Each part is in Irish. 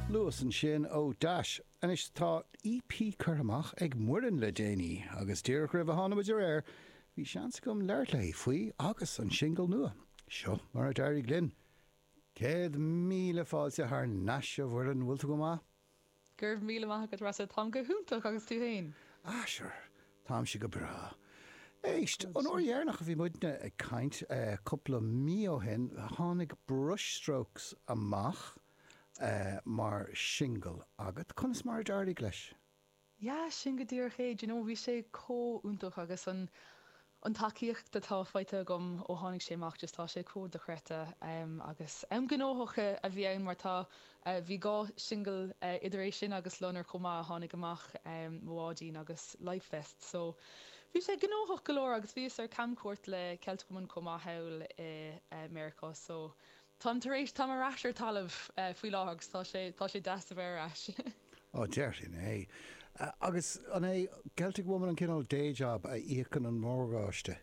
Luas ansin ó Dash. Anois tá EP curtha amach ag Muirgen le déanaí agus díreach roimh a tháinig muid ar aer bhí seans agam labhairt léi faoi agus an singil nua. Seo mar a d'éirigh linn. Céad míle fáilte thar nais a Mhuirgen, bhfuil tú go maith? Go raibh míle maith agat, Rossa, táim go hiontach agus tú féin? Ah sure, táimse go breá. Éist, an uair dheireanach a bhí muidne ag caint, cúpla mí ó shin, tháinig Brushstrokes amach mar singil agat, conas mar a d'éirigh leis? Yeah, sin go díreach é. Do you know, bhí sé chomh iontach agus an, an tacaíocht atá faighte agam ó tháinig sé amach, just tá sé chomh dochreidte. Em, agus am gnóthach a bhí ann mar tá, eh, bhí dhá singil, eh, idir é sin agus Loinnir chomh maith a tháinig amach, em, Mo Bháidín agus Life Vests. So, bhí sé gnóthach go leor agus bhíos ar camchuairt le Celtic Woman chomh maith thall i, eh, Meiriceá. So, Táim tar éis, táim ar ais ar talamh faoi láthair agus tá sé, tá sé deas a bheith ar ais. Á, déarfainn é. Agus an é Celtic Woman an cineál day-job a íocann an morgáiste?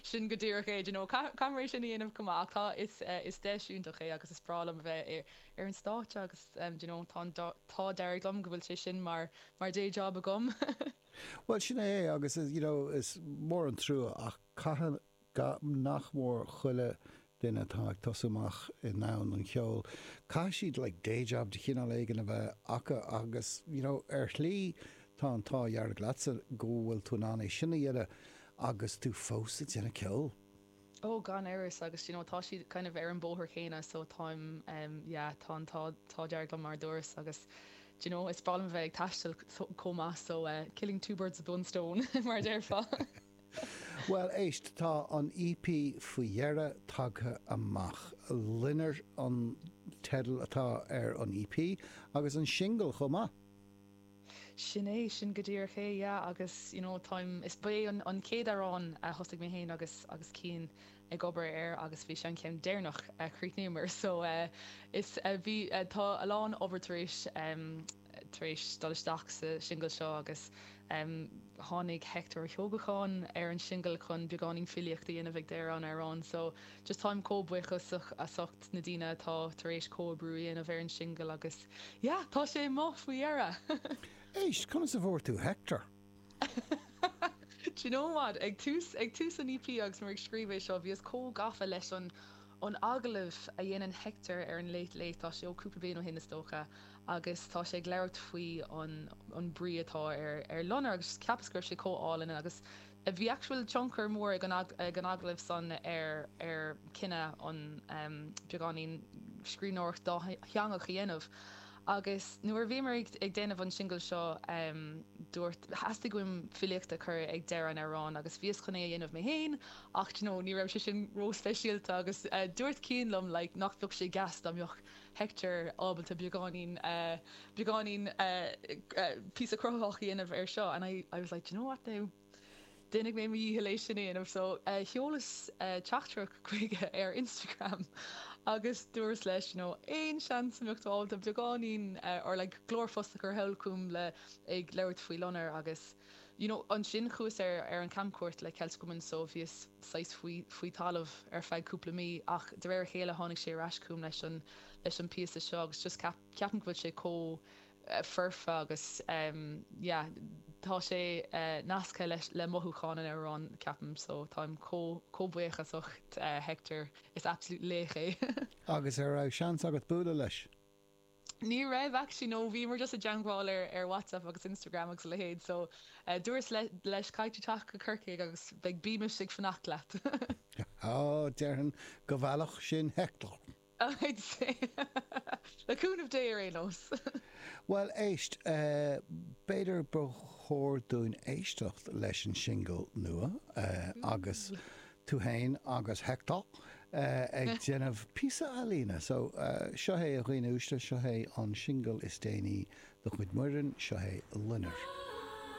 Sin go díreach é, do you know, caithfear é sin a dhéanamh chomh maith ach tá, is, is deis iontach é agus is breá liom a bheith ar, ar an stáitse agus do you know, tá an t-ádh dearg liom go bhfuil sé sin mar, mar day-job agam. Bhuel, sin é é agus is, you know, is mór an trua ach caithfidh, Gach, nach mór chuile dhuine atá ag tosú amach i ndomhan an cheoil, caithfidh siad like day job de chineál éigin a bheith acu agus you know ar shlí tá an t-ádh dearg leatsa go bhfuil tú in ann é sin a dhéanamh agus tú fós ag déanamh ceoil. Oh, gan amhras agus d'you know tá siad kind of ar an bhóthar chéanna so táim ehm yeah tá an t-ádh dearg liom mar a dúras agus d'you know is breá liom a bheith ag taisteal chomh maith so eh killing two birds with one stone mar a déarfá. Bhuel, éist, tá an EP faoi dheireadh tagtha amach. 'Loinnir' an teideal atá ar an EP, agus an singil chomh maith! Sin é, sin go díreach é, yeah, agus, you know, táim, is, ba é an chéad amhrán a thosaigh mé féin agus, agus Cian ag obair air agus bhí sé an ceann deireanach a chríochnaíomar, so, eh, is, bhí, tá a lán obair tar éis, em, tar éis dul isteach sa singil seo agus tháinig Hector Ó hEochagáin ar an singil chun beagáinín filíocht a dhéanamh ag deireadh an amhráin so just táim chomh buíoch as ucht na daoine atá tar éis comhoibriú a dhéanamh ar an singil agus yeah tá sé amuigh faoi dheireadh! Éist, conas a bhfuair tú Hector? Do you know what? Ag tús, ag tús an EP agus mé ag scríobh é seo, bhíos chomh gafa leis an, an agallamh a dhéanann Hector ar an Late Late, tá sé ó cúpla bliain ó shin is dócha, agus tá sé ag labhairt faoi an, an brí atá ar, ar loinnir agus just cheapas go raibh sé chomh álainn agus bhí actual tionchar mór ag an, ag an agallamh san ar, ar chinneadh an, em, beagáinín scríbhneoireacht dátheangach a dhéanamh. Agus nuair a bhíomar ag déanamh an singil seo, dúirt, theastaigh uaim filíocht a chur ag deireadh an amhráin agus bhíos chun é a dhéanamh mé féin ach do you know, ní raibh sé sin ró-speisialta agus dúirt Cian liom like nach bheadh sé deas dá mbeadh Hector ábalta beagáinín, beagáinín píosa cruthaitheach a dhéanamh air seo and I, I was like, do you know what now? Déanfaidh mé mo dhícheall é sin a dhéanamh. So, sheolas teachtaireacht chuige ar Instagram agus dúras leis, you know, aon seans a mbeadh tú ábalta beagáinín or like glórphost a chur thall chugam le ag labhairt faoi loinnir agus, you know, ansin chuas ar ar an camchuairt le Celtic Woman so bhíos saghas faoi faoi talamh ar feadh cúpla mí ach de réir a chéile tháinig sé ar ais chugam leis an leis an bpíosa seo agus just ceap ceapaim go bhfuil sé chomh foirfe agus yeah tá sé nasctha leis le mothúcháin an amhráin ceapaim so táim chomh chomh buíochasach de Hector, is absolute laoch é. Agus ar raibh seans agat bualadh leis? Ní raibh actually no bhíomar just i dteangmháil ar ar WhatsApp agus Instagram agus a leithéid so dúras le leis caithfidh tú teacht go Corcaigh agus beidh bímis ag fanacht leat. Ó, déarfainn go bhfeilfeadh sin Hector. I'd say, Le cúnamh Dé ar aon nós! Bhuel, éist, b'fhéidir ba chóir dúinn éisteacht leis an singil nua agus tú féin agus Hector ag déanamh píosa ealaíne. So, seo é, a dhaoine uaisle, seo é an singil is déanaí de chuid Muireann, seo é Loinnir.